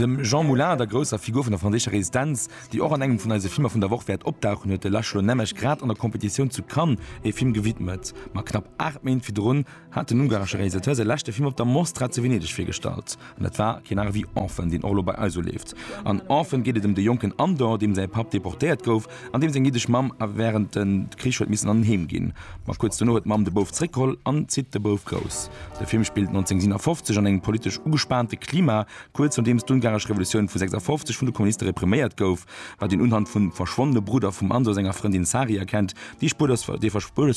Dem Jean Moulin, der grousser Figur vun der franséischer Resistenz, déi och an engem vun eise Filmer vun der Woch wäert opdauchen, huet de László Nemes grad an der Competitioun zu Cannes ee Film gewidmet. Ma knapp 8 Méint virdrun, hat den ungaresche Realisateur säi leschte Film op der Mostra zu Venedeg virgestallt, an dat war keen aner wéi Orphan, deen och elo bei eis uleeft. An Orphan geet et ëm de jonken Andor, deem säi Papp deportéiert gouf an deem seng jiddesch Mamm a wärend de Krich huet missen an en Heem ginn. Ma kuerz dono huet d'Mamm de Bouf zréckgeholl an zitt de Bouf grouss. De Film spillt 1957 an engem politesch ugespaante Klima, kuerz nodeems d'ungaresch Revolutioun vu 56 vun de Kommuniste repriméiert gouf. wat een unhand vum verschwonnene Brudder vum Anso senger Frëndin Sari erkennt, déi spuerlos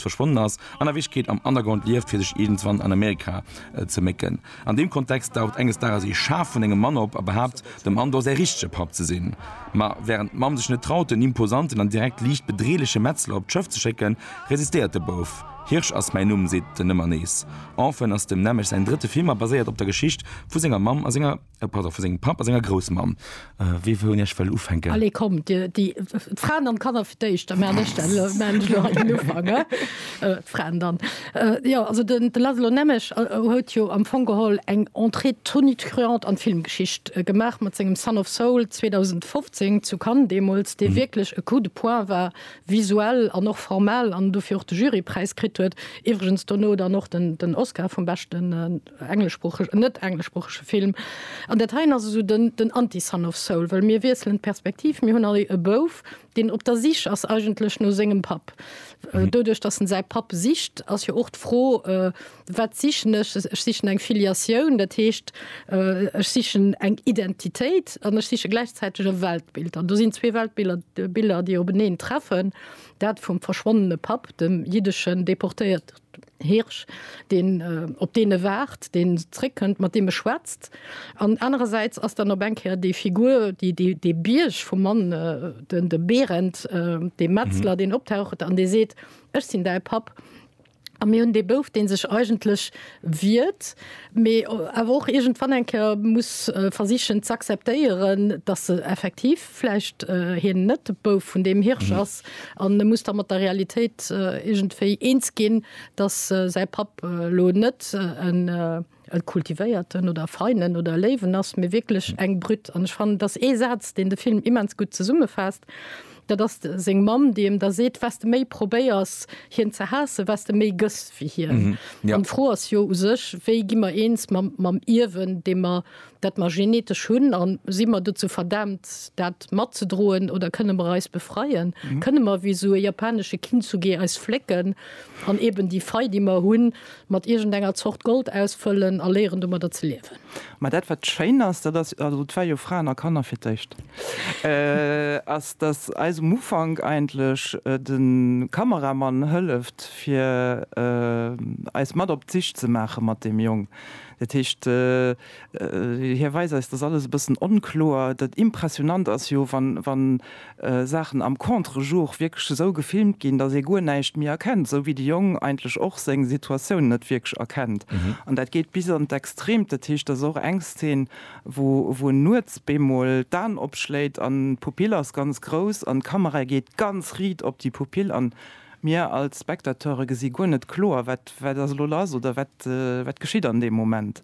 verschwonnen ass an a Wierklechkeet am Underground lieft, fir sech iergendwann an Amerika ze mécken. An deem Kontext daucht enges Dages ee Schaf vun engem Mann op a behaapt, dem Andor säi richtege Papp ze sinn. Ma wärend d'Mamm sech net traut, den imposanten an direkt liicht bedreeleche Metzler op d'Schëff ze schécken, resistéiert de Bouf. Hirsch ass mäin Numm, seet en ëmmer nees. Orphan ass dem Nemec säin drëtte Film a baséiert op der Geschicht vu senger Mamm a senger. E Patt vu sengem Papp a senger Groussmamm. Wee wou un Iech wëll ufänken? Allez, kommt, Dir, déi Fraen an d'Kanner fir d'éischt, da maachen ech dann elo, maachen ech elo hei den Ufank, he? D'Fraen dann. Jo, also de Laszlo Nemes huet jo am Fong geholl eng Entrée tonitruante an d'Filmgeschicht gemaach mat sengem Son of Saul 2015 zu Cannes deemools, dee wierklech e Coup de poing war, visuell an och formal, an dofir och de Jurypräis kritt huet, iwwregens dono dann och den Oscar vum beschten. engleschsproocheg an net-engleschsproochege Film. An dat heien ass esou den, den Anti-Son of Saul, wëll mir wiesselen d'Perspektiv, mir hunn all e Bouf, deen op der Sich ass eigentlech no sengem Papp. Doduerch, datt en säi Papp sicht, ass jo och d'Fro, Wat sichen ech? Ech sichen eng Filiatioun, dat heescht, ech sichen eng Identitéit an ech siche gläichzäiteg e Weltbild. An do sinn zwee Weltbiller, Biller, déi openeen treffen, dat vum verschwonnene Papp, dem jiddesche Deportéiert, Hirsch, deen op deene waart, deen zréckkënnt, mat deem e schwätzt. An anerersäits ass dann op eng Kéier déi Figur, déi, déi, dee Bierg vum Mann, den, de Berend, dee Metzler, deen optaucht an dee seet, Ech sinn däi Papp. A mir hunn dee Bouf, dee sech eigentlech wiert, mee awer och iergendwann eng Kéier muss versichen z'acceptéieren, datt e effektiv vläicht hien net de Bouf vun deem Hirsch ass an e muss da mat der Realitéit iergendwéi eens ginn, datt säi Papp elo net e kultivéierten oder e feinen oder e léiwen ass, mee wierklech eng Brute. An ech fannen, et ass ee Saz, deen de Film immens gutt zesummefaasst, dat ass seng Mamm, déi em da seet, Wes de méi probéiers, hien ze haassen, wes de méi gëss wéi hien. An d'Fro ass jo u sech, Wéi gi mer eens mam Ierwen, dee mer dat mer genetesch hunn an si mer dozou verdaamt dat matzedroen oder kënne mer eis befreien? Kënne mer wéi esou e japanesche Kintsugi eis flécken an eben déi Fei déi mer hunn mat iergendenger Zort Gold ausfëllen a léieren domadder ze liewen? Mä dat wat schéin ass, dat ass, also et war jo Fraen a Kanner fir d'éischt, ass datt eis um Ufank eigentlech de Kameramann hëlleft fir eis mat op d'Sich ze maache mat deem Jong. Dat heescht, hie weist eis, dass alles e bëssen onkloer. Dat Impressionant ass jo, wann Saachen am Contre-jour wierklech esou gefilmt ginn, dass ee guer näischt méi erkennt, esou wéi de Jong eigentlech och seng Situatioun net wierklech erkennt. An dat geet bis an d'Extreemt. Dat heescht, dass och eng Szen, wou en nuets bemol d'Aen opschléit an d'Pupill ass ganz grouss an d'Kamera geet ganz riit op déi Pupill an Mir als Spectateure gesi guer net kloer, wat wat ass elo lass oder wat wat geschitt an deem Moment.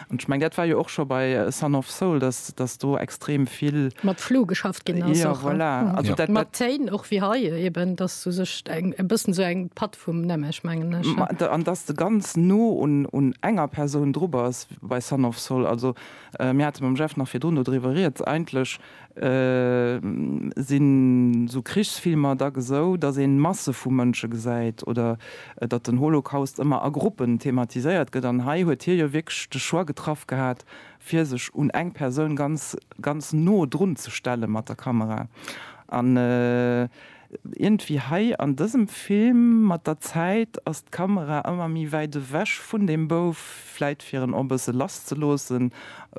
An ech meng, dat war jo och scho bei A Son of Soul, dass dass do extrem vill. Mat Flou geschafft ginn ass. Jo, voilà. Also dat. Mat Téin och wéi hei eben, dass du sech eng e bëssen esou eng Patt vum Nemech, mengen ech. Ma an dass de ganz no un un enger Persoun dru bass bei Son of Soul. Also mir hate mam Jeff nach virdrun dodriwwer rieds. Eigentlech Sinn esou Krichsfilmer da gesou, datt een Masse vu Mënsche gesäit oder datt den Holocaust ëmmer a Gruppen thematiséiert gëtt? An hei huet hie jo wierklech de Choix getraff gehat, fir sech un eng Persoun ganz, ganz no drunzestelle mat der Kamera. An Iergendwéi hei an dësem Film, mat der Zäit ass d'Kamera ëmmer méi wäit ewech vun dem Bouf, vläit fir en och e bësse lass ze loossen,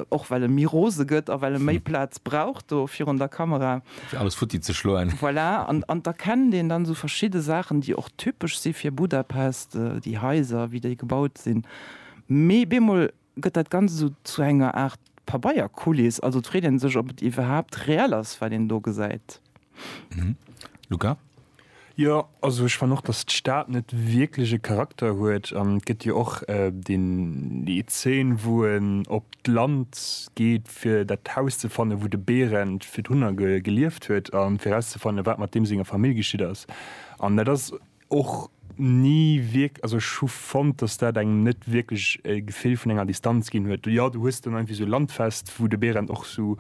och well e méi rose gëtt a well e méi Plaz brauch do virun der Kamera. Fir alles futti ze schloen. Voilà, an d'erkennt een dann esou verschidde Saachen, déi och typesch si fir Budapest, déi Haiser, wéi déi gebaut sinn. Mee bemol gëtt dat Ganzt esou zu enger Aart Pabeierkuliss, also et freet een sech ob et iwwerhaapt reell ass wat een do gesäit. Luca? Jo, also ech fannen och dass d'Stad net wierklech e Charakter huet an et gëtt jo och déi Zeen wou en op d'Land geet fir dat Haus ze fannen wou de Berend fir d'Hunner gelieft huet an fir erauszefannen wat mat deem senger Famill geschitt ass an dat ass och ni wierk-, also ech hu fonnt, dass dat engem net wierklech e Gefill vun enger Distanz ginn huet. Jo, du hues dann irgendwie sou Landfest, wou de Berend och sou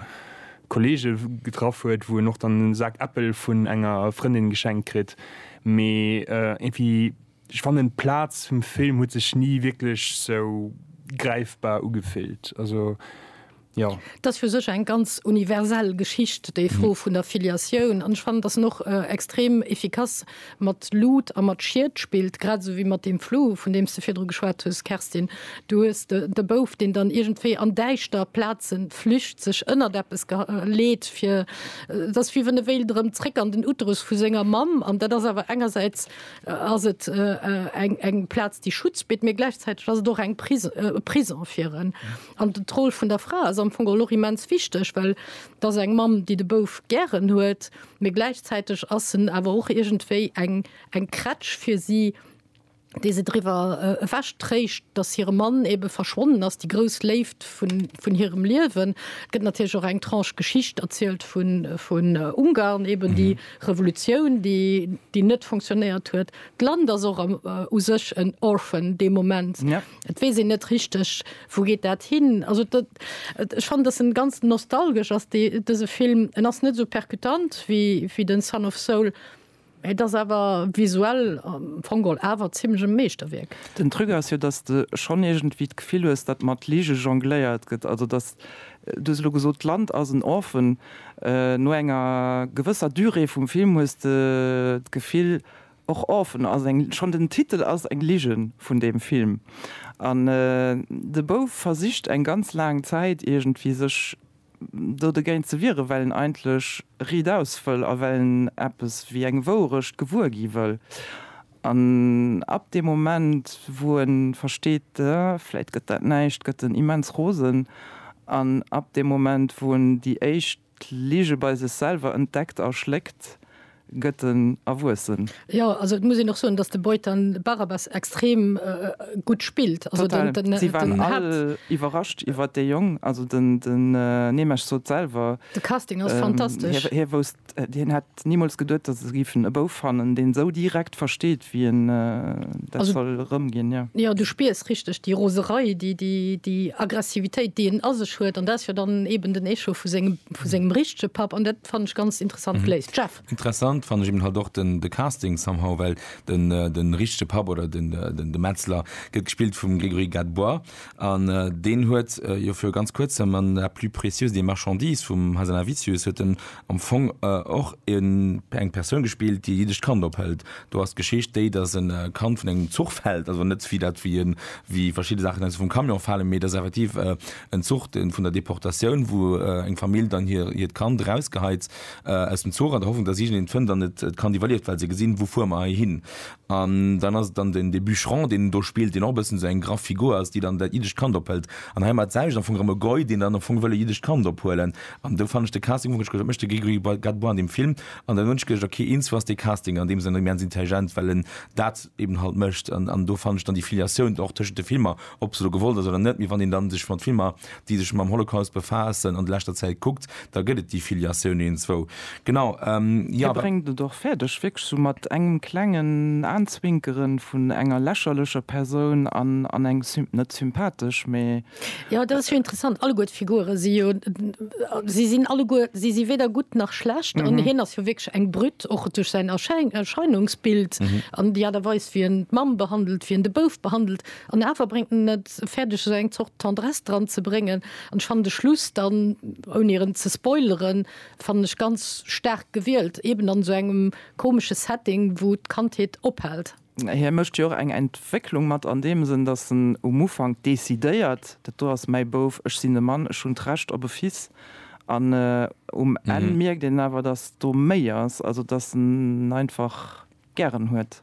Kollege getraff huet, wou en och dann e Sak Äppel vun enger Frëndin geschenkt kritt, mee irgendwie, ech fannen, d'Plaz vum Film huet sech ni wierklech sou gräifbar ugefillt. Also. Jo. Dat ass fir sech eng ganz universell Geschicht, déi Fro vun der Filiatioun. An ech fannen, dass en och extrem efficace mat Lut a mat Schied spillt, grad esou wéi mat deem Flou, vun deem s de virdru geschwat hues, Kerstin. Du hues de Bouf, deen dann iergendwéi an däischter Plaze flücht, sech ënnert eppes leet, fir. Et ass wéi wann e wéilt erëm zréck an den Uterus vu senger Mamm. An dat ass awer engersäits ass et eng Plaz, déi Schutz bitt, mä gläichzäiteg ass et och eng Prison fir en. An d'Roll vun der Fra ass am Fong och immens wichteg, well et ass eng Mamm, déi de Bouf gären huet, mee gläichzäiteg ass en awer och iergendwéi eng eng Krätsch fir si, déi se driwwer ewech tréischt, datt hire Mann ebe verschwonnen ass, déi grouss Léift vun vun hirem Liewen. Et gëtt natierlech och eng Tranche Geschicht erzielt vun vun Ungarn, eben déi Revolutioun, déi déi net fonctionnéiert huet. D'Land ass och u sech en Orphan dee Moment. Et weess een net richteg, wou geet dat hin. Also dat, ech fannen, dass en ganz nostalgesch ass, dee, dëse Film. En ass net esou percutant wéi, wéi den Son of Saul, mä et ass awer visuell am Fong geholl awer zimlech e Meeschterwierk. Den Truc ass jo, dass de schonn iergendwéi d'Gefill hues, datt mat Lige jongléiert gëtt. Also dass, du hues elo gesot, d'Land ass en Orphan. No enger gewësser Durée vum Film hues de d'Gefill, Och Orphan ass eng, schonn den Titel ass eng Ligen vun deem Film. An de Bouf versicht eng ganz laang Zäit iergendwéi sech do dogéint ze wieren, well en eigentlech Ried aus wëll a well en eppes wéi eng Wouerecht gewuer gi wëll. An ab deem Moment, wou en versteet, vläit gëtt dat näischt, gëtt en immens rosen. An ab deem Moment, wou en déi éischt. D'Lige bei sech selwer entdeckt a schléckt, gëtt en Erwuessen. Jo, also et muss een och soen, datt de Beutan Barabas extrem gutt spillt. Total, si waren all iwwerrascht iwwer dee Jong. Also den Nemec sot selwer. De Casting ass fantastesch. Hie wousst, hien hätt Nimools geduet, dass se géifen e Bouf fannen, deen esou direkt versteet, wéi en dat soll erëmginn, jo. Jo, du spiers richteg déi Roserei, déi Aggressivitéit, déi en a sech huet. An dat ass jo dann eben den Echo vu sengem richtege Papp. An dat fannen ech ganz interessant geléist. Jeff? Interessant fannen ech eben halt och de Casting somehow, well de richtege Papp oder de Metzler gëtt gespillt vum Grégory Gadebois. An deen huet jo viru ganz Kuerzem an La plus précieuse des marchandises vum Hazanavicius huet en am Fong och eng Persoun gespillt, déi e jiddescht Kand ophëlt. Do ass d'Geschicht déi, datt e Kand vun engem Zuch fält, also net wéi dat, wéi en, wéi verschidde Saachen eis vum Camion falen, mee et ass effektiv en Zuch dee vun der Deportatioun, wou eng Famill dann hir, hiert Kand erausgeheizt aus dem Zuch an der Hoffnung, datt iergend een et fënnt an et d'Kand iwwerlieft, well se gesinn, wou fuere mer heihin? An dann ass et dann den de Bûcheron, deen en do spillt, deen och e bëssen esou eng graff Figur ass, déi dann dat jiddescht Kand ophëlt. An heimat ass selwecht am Fong erëm e Goi, deen dann am Fong wëll e jiddescht Kand ophuelen. An do fannen ech de Casting, wou ech geduecht hunn, wat mécht de Grégory Gadebois an deem Film? An dann hunn ech geduecht, ok, eens ass dee Casting an deem Sënn immens intelligent, well en dat eben halt mécht. An do fannen ech dann déi Filiatioun och tëschent de Filmer ob se elo gewollt ass oder net, mee wann een da sech mat Filmer, déi sech mam Holocaust befaassen, an leschter Zäit kuckt, da gëtt et déi Filiatioun eenzwou. Genau, jo. Hie bréngt et och fäerdeg, wierklech sou mat engem klengen Aenzwinkere vun enger lächerlecher Persoun an eng, net sympathesch, mee. Jo, dat ass jo interessant. Alleguer d'Figure si jo, si sinn alleguer, si si weder gutt nach schlecht. An hien ass jo wierklech eng Brute, och duerch säin Erscheinungsbild an déi Aart a Weis, wéi en d'Mamm behandelt, wéi en de Bouf behandelt. An awer bréngt en et fäerdeg esou eng Zort Tendresse dran ze bréngen an ech fannen de Schluss dann, ouni erëm ze spoileren, fannen ech ganz staark gewielt, eben an esou engem komesche Setting wou d'Kandheet ophält. Hie mécht jo och eng Entwécklung mat an deem Sënn, datt en um Ufank decidéiert, dat do ass mäi Bouf, ech sinn e Mann, ech hunn d'Recht op e Fils an um Enn mierkt een awer, datt do méi ass, also datt en einfach gären huet.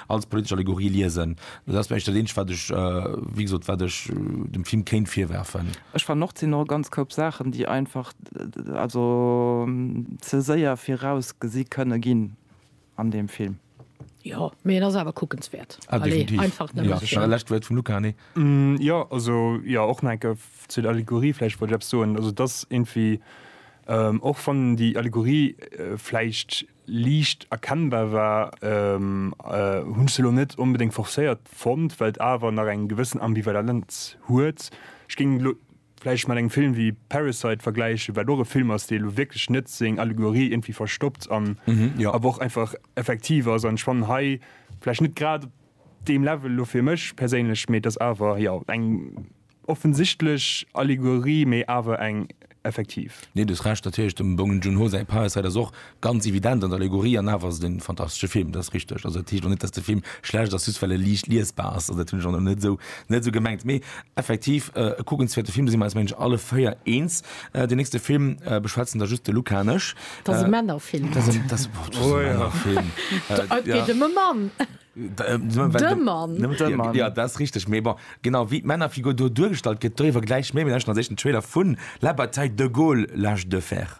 als politesch Allegorie liesen. Dat ass vläicht dat Eenzegt, wat ech, wéi gesot, wat ech dem Film kéint virwerfen. Ech fannen och, et sinn och e ganz Koup Saachen, déi einfach, also ze séier virausgesi kënne ginn an deem Film. Jo, mee en ass awer kuckenswäert. Ah, definitiv. Lescht Wuert vum Luca, nee? Jo, also, jo, och nach eng Kéier zu der Allegorie, vläicht wollt ech eppes soen. Also, et ass iergendwéi, och wann déi Allegorie vläicht liicht erkennbar war, hunn ech se elo net onbedéngt forcéiert fonnt, well et awer nach eng gewëssen Ambivalenz huet. Ech géing elo vläicht mat engem Film wéi Parasite vergläichen, wat och e Film ass, dee elo wierklech net seng Allegorie iergendwéi verstoppt an awer och einfach effektiv ass. An ech fannen hei vläicht net grad op deem Level elo, fir mech perséinlech, mee et ass awer, jo, eng. Offensichtlech Allegorie, mee awer eng effektiv. Nee, du hues Recht, natierlech, dem Bong Joon-ho säi Parasite ass och ganz evident an Allegorie an awer ass et en fantastesche Film, dat ass richteg. Also dat heescht och net, dass de Film schlecht ass just well e liicht liesbar ass, also dat hunn ech och net esou net esou gemengt, mee effektiv e kuckenswäerte Film, do si mer eis mengen ech alle véier eens. Deen nächste Film beschwätzen da just de Luca an ech. Dat ass e Männerfilm. Dat ass e Männerfilm. Oula. Et geet ëm e Mann. De Mann. Jo, dat ass richteg, mee bon, genau wéi d'Männerfigur do duergestallt gëtt, doriwwer gläich méi. Mir lauschten als éischt den Trailer vu La bataille de Gaulle, l'âge de fer.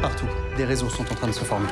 Partout, des réseaux sont en train de se former.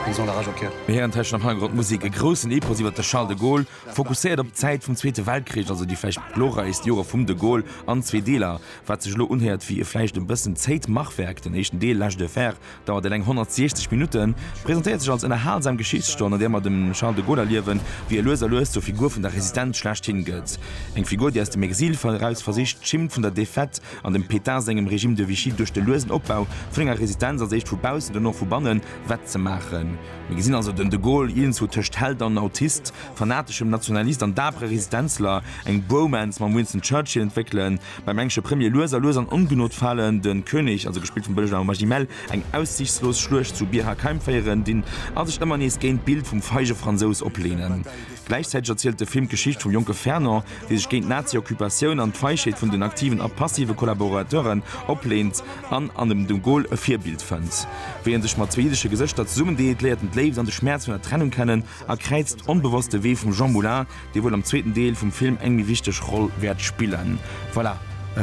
Ils ont la rage au cœur. Mir héieren d'Hëschen am Hannergrond d'Musek, e groussen Epos iwwer de Charles de Gaulle, fokusséiert op d'Zäit vum Zweete Weltkrich, also déi vläicht glorreichst Joer vum de Gaulle, an zwee Deeler. Wat sech elo unhéiert wéi e vläicht e bëssen zéiht Machwerk, den éischten Deel, L'âge de fer, Dauert eleng 160 Minutten, presentéiert sech als ënnerhalsam Geschichtsstonn, an där mer dem Charles de Gaulle erliewen, wéi e lues a lues zur Figur vun der Resistenz schlechthin gëtt. Eng Figur, déi aus dem Exil eraus versicht, d'Schimm vun der Defaite an dem Pétain sengem Régime de Vichy duerch de luesen Opbau vun enger Resistenz, als éischt vu baussen, duerno vu bannen, wettzemaachen. Mir gesinn also den de Gaulle iergendzwou tëscht Held an Autist, fanateschem Nationalist an dapere Resistenzler, eng Bromance mam Winston Churchill entwéckelen, Beim englesche Premier lues a lues an Ongenot falen, de König, also gespillt vum Belge Arnaud Magimel, eng aussichtslos Schluecht zu Bir Hakeim féieren, dinn a sech ëmmer nees géint d'Bild vum feige Fransous opleenen. Gläichzäiteg erzielt de Film d'Geschicht vum jonke Fernand, dee sech géint d'Nazi-Occupatioun an d'Feischheet vun den aktiven a passive Kollaborateuren opleent an an dem de Gaulle e Virbild fënnt. Wéi en sech mat zwee jiddesche Gesëschter zesummendeet, léiert en d'Léift an de Schmäerz vun der Trennung kennen a kräizt onbewosst de Wee vum Jean Moulin, Dee wuel am zweeten Deel vum Film eng méi wichteg Roll wäert spillen. Voilà,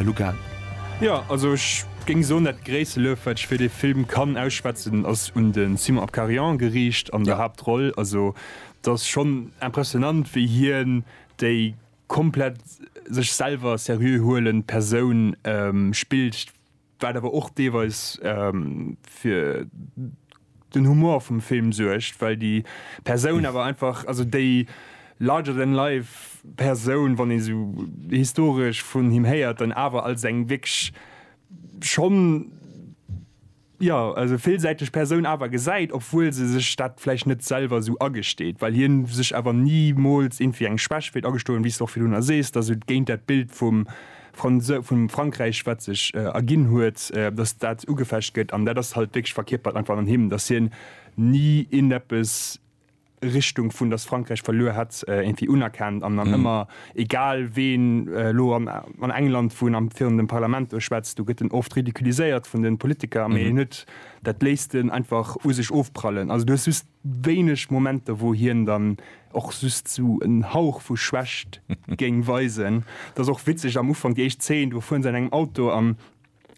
Luca. Jo, also ech géing soen, dat gréisste Luef, wat ech fir dee Film kann ausschwätzen, ass un de Simon Abkarian geriicht an der Haaptroll. Also et ass schonn impressionant, wéi hien déi komplett sech selwer seriö huelend Persoun spillt. Wat awer och deelweis fir den Humor vum Film suergt, well déi Persoun awer einfach, also déi larger than life Persoun, wann ee sou historesch vun him héiert, dann awer als eng wierklech schonn, jo, also villsäiteg Persoun awer gesäit, obwuel se sech dat vläicht net selwer sou agesteet, well hien sech awer nimools iergendwéi eng Schwäch wéilt agestoen, wéi s de och virdrunner sees, dass et géint dat Bild vum Franse vum Frankräich, wat sech erginn huet, datt dat ugefecht gëtt, an dat ass halt wierklech verkierpert einfach an him, datt hien ni ieneppes Richtung vun datt Frankräich verluer hätt iergendwéi unerkennt an dann ëmmer, egal ween elo an England wou en am virun dem Parlament do schwätzt, do gëtt en oft ridiculiséiert vun de Politiker, mee hien huet, dat léisst en einfach u sech ofprallen. Also du hues just wéineg Momenter wou hien dann och just sou en Hauch vu Schwächt géing weisen. Et ass och witzeg am Ufank, déi éischt Zeen, do fueren se an engem Auto an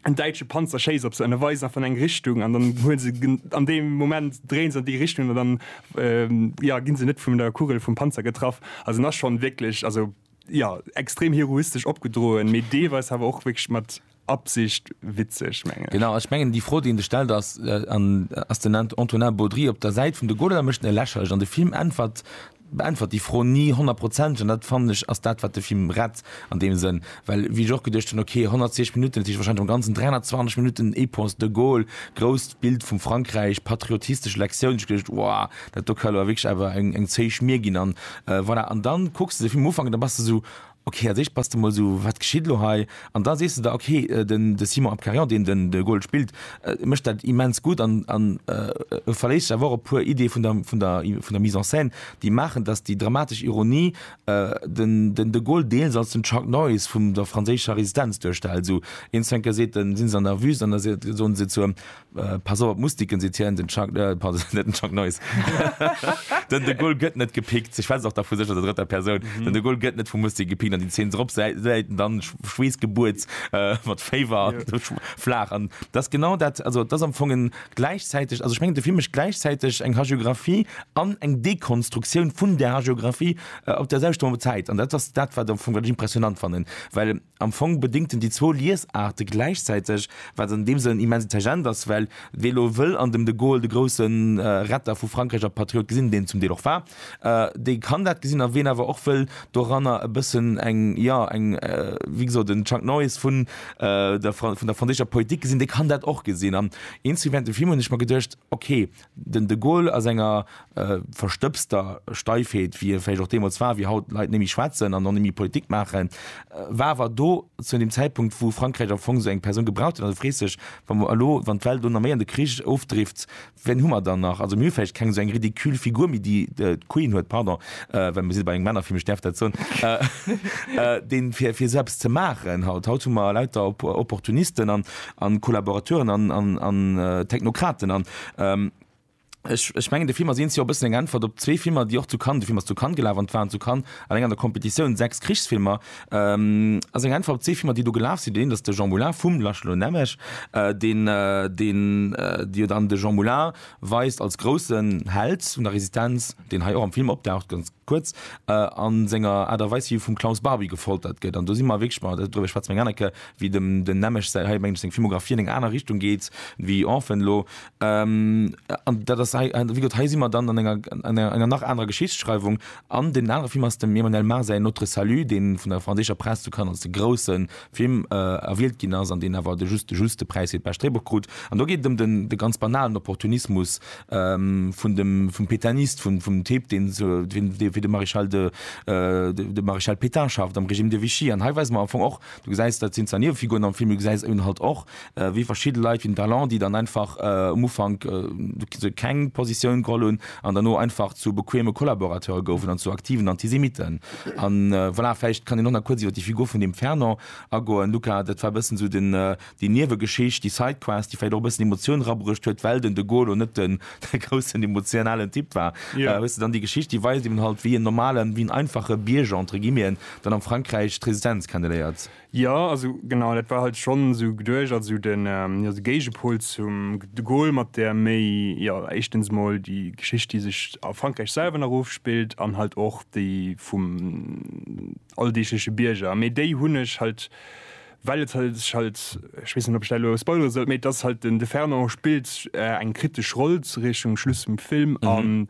en däitsche Panzer schéisst op se an e weist einfach an eng Richtung an dann huele se an deem Moment dréien se an déi Richtung an dann, jo, ginn se net vun der Kugel vum Panzer getraff. Also en ass schonn wierklech, also, jo, extrem heroistesch opgedroen, mee deelweis awer och wierklech mat Absicht witzeg mengen ech. Genau, ech mengen déi Fro déi en sech stellt ass, an ass den Antonin Baudry op der Säit vun de Goler oder mécht en e lächerlech? An de Film äntwert, beäntwert déi Fro ni honnertprozenteg an dat fannen ech ass dat wat de Film rett an deem Sënn, well wéi ech och geduecht hunn, ok 120 Minutten, dat heescht wahrscheinlech am ganzen 320 Minutten Epos, de Gaulle, grousst Bild vum Frankräich, patriotistesch Lektioun, ech geduecht wouah dat do ka elo wierklech awer eng zéi Schmier ginn an voilà. An dann kucks de de Film um Ufank an da bass de esou Ok, als éischt bass de mol esou, wat geschitt elo hei? An da sees de der, ok, den de Simon Abkarian, deen den de Gold spillt, mécht dat immens gutt an an e verléisst sech awer och op e puer Ideeë vun der vun der vun der Mise en scène, déi maachen, datt déi dramatesch Ironie den den de Gold deels als den Chuck Norris vum der franséischer Resistenz duerstellt. Esou eens vun enker seet en, si se an der Wüst, an da soen se zur Pass op, muss dicken si tiens den Chuck, äh, pardon, net den Chuck Norris. den de Gaulle gëtt net gepickt. Ech schwätzen och da vu sech an der drëtter Persoun. Den de Gaulle gëtt net vum Musti gepickt an déi Zeen se ropsäit, säiten dann schw schweessgebuets äh, mat Féiwer an do schw flaach. An dat ass genau dat, also dat ass am Fong en gläichzäiteg, also ech mengen de Film mécht gläichzäiteg eng Hagiographie an eng Dekonstruktioun vun där Hagiographie äh, op där selwechter Zäit. An dat ass dat, wat am Fong, wat ech impressionant fannen, well Am Fong bedingt en déi zwou Liesaarte gläichzäiteg, wat an deem Sënn immens intelligent ass, well wee elo wëll an dem de Gaulle de grousse Retter vu Frankräich a Patriot gesinn, deen en zum Deel och war, dee kann dat gesinn. A ween awer och wëll doranner e bëssen eng, jo, eng, wéi gesot, en Chuck Norris vun der franséischer Politik gesinn, dee kann dat och gesinn. An eens wéi während dem Film hunn ech mer geduecht, ok, Den de Gaulle a senger verstëbster Steifheet, wéi e vläicht och deemools war, wéi haut Leit némmi schwätzen an och némmi Politik maachen, war awer do zu deem Zäitpunkt, wou Frankräich am Fong esou eng Persoun gebraucht huet. An du frees dech, wa mer elo, wann d'Welt elo nach méi an de Krich ofdrift, wien hu mer dann nach? Also mir hu vläicht keng esou eng ridicule Figur méi, déi d'Queen huet, pardon, well mir si bei engem Männerfilm, ech däerf dat soen, deen fir esou eppes ze maachen haut. Haut hu mer lauter Opportunisten a Collaborateuren an Technokraten an Ähm, ech, ech mengen de Film ass eens jo bëssen eng Äntwert op zwee Filmer, déi och zu Cannes, de Film ass zu Cannes gelaf an waren zu Cannes alleng an der Competitioun sechs Krichsfilmer. Ähm, ass eng Äntwert op zwee Filmer, déi do gelaf sinn. Deen een ass de Jean Moulin vum Laszlo Nemes, äh, deen, äh, deen, äh, déi jo dann de Jean Moulin weist als groussen Held vun der Resistenz, deen hei och am Film opdaucht, ganz, Kuerz, a senger Aart a Weis, wéi vum Klaus Barbie gefoltert gëtt. An do si mer wierklech, ma driwwer schwätze mer eng aner Kéier, wéi dem den Nemec säi, hei mengen ech, seng Filmographie an eng aner Richtung geet wéi Orphan elo. An dat ass hei, wéi gesot, hei si mer dann an enger, an enger nach anerer Geschichtsschreiwung. An deen anere Film ass dem Emmanuel Mar säin Notre Salut, dee vun der franséischer Press zu Cannes als de grousse Film erwielt ginn ass an deen awer de just de juste Präis fir d'bescht Dréibuch krut. An do geet et ëm de ganz banalen Opportunismus vum Pétainiste, vum Typ, dee fir de Maréchal de de Maréchal Pétain schafft am Régime de Vichy. An hei weise mer am Fong och, du gesäis, dat sinn zwar Niewefiguren am Film, mee du gesäis eben halt och, wéi verschidde Leit wéi den Talon, déi dann einfach um Ufank keng Positioun geholl hunn an derno einfach zu bequeme Collaborateure goufen an zu aktiven Antisemitten. A voilà, vläicht kann een och nach kuerz iwwer déi Figur vun deem Fernand agoen, Luca. Dat war e bëssen esou déi Niewegeschicht, déi Sidequest, déi vläicht och e bëssen Emotioun erabruecht huet, well den de Gaulle net de groussen emotionalen Typ war. Hues de dann déi Geschicht, déi weist eben halt, wéi en normalen, wéi en einfache Bierger, entre guillemeten, dann am Frankräich d'Resistenz kenneléiert? Jo, also genau, dat war halt schonn esou geduecht, also de Géigepol zum de Gaulle mat där méi, jo, éischtens emol déi Geschicht, déi sech a Frankräich selwer nach ofspillt an halt och déi vum alldeegleche Bierger. Mee déi hunn ech halt, well et sech halt, ech weess net, ob ech dat elo spoilere soll, mee et ass halt den, de Fernand spillt eng kritesch Roll Richtung Schluss vum Film an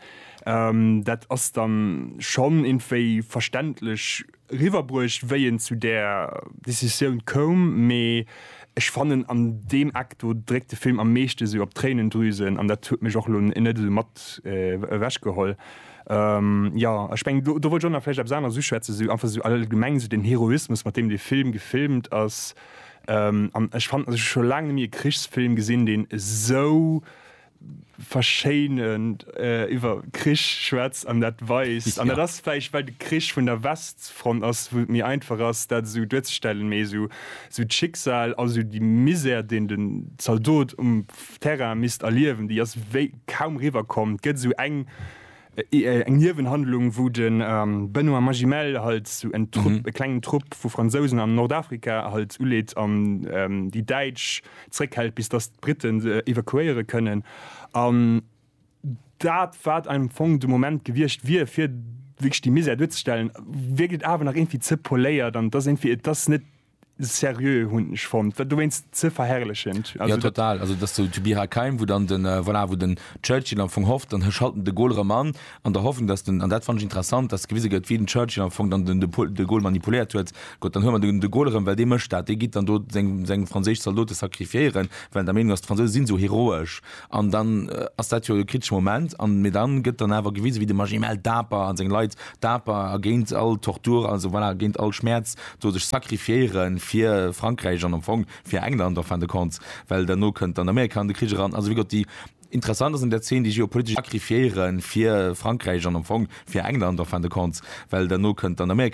dat ass dann schonn iergendwéi verständlech, eriwwerbruecht wéi en zu där Decisioun koum, mee ech fannen an deem Eck do dréckt de Film am meeschte sou op d'Tréinendrüsen an dat huet mech och elo net esou mat ewech geholl. Jo ech mengen do wollt ech och nach vläicht eppes aneres uschwätzen, sou einfach sou allgemeng sou den Heroismus mat deem dee Film gefilmt ass an ech fannen ech hu scho laang net méi e Krichsfilm gesinn deen esou verschéinend iwwer Krich schwätzt an dat weist. An dat ass vläicht, well de Krich vun der Westfront ass, wou et méi einfach ass, dat esou duerzestellen, méi esou d'Schicksal a sou déi Misär, deen den Zaldot um Terrain misst erliewen, déi ass wéi kaum riwwer komm. Et gëtt esou eng. eng Niewenhandlung wou de Benoît Magimel halt sou en Trupp, e klengen Trupp vu Fransousen an Nordafrika halt uleet an déi Däitsch zréckhält bis datt d'Britten se evakuéiere kënnen an dat wat am Fong de Moment gewiescht wier fir wierklech déi Misär duerzestellen, wierkt et awer nach iergendwéi ze poléiert an et ass iergendwéi, et ass net seriö hun ech fonnt do wéinst ze verherrlechend ja total also dass du to be high keim wo dann den äh, voilà wo den Churchill am Fong hofft dann schalten de Gaulle rem an an der Hoffnung dass den an dat fand ich interessant dass gewise gëtt wien den Churchill am Fong dann den de Gaulle manipuléiert huet Gott dann hu man de Gaulle rem well dee mëscht dat dee gitt dann do seng seng franséisch Zaldote sacrifiéieren well der Meenung ass d'Fransouse sinn sou heroesch An dann ass dat jo e kriteschen Moment, an mee dann gëtt dann awer gewisen, wéi de Magimel daper an seng Leit daper a géint all Tortur, also voilà, géint all Schmäerz do sech sacrifiéieren fir Frankräich an am Fong fir England en fin de compte, well derno kënnt dann Amerika an de Krich eran. Also wéi geott, déi interessant ass an där Zeen déi geopolitesch. Sacrifiéieren fir Frankräich an am Fong fir England en fin de compte, well derno kënnt dann Amerika.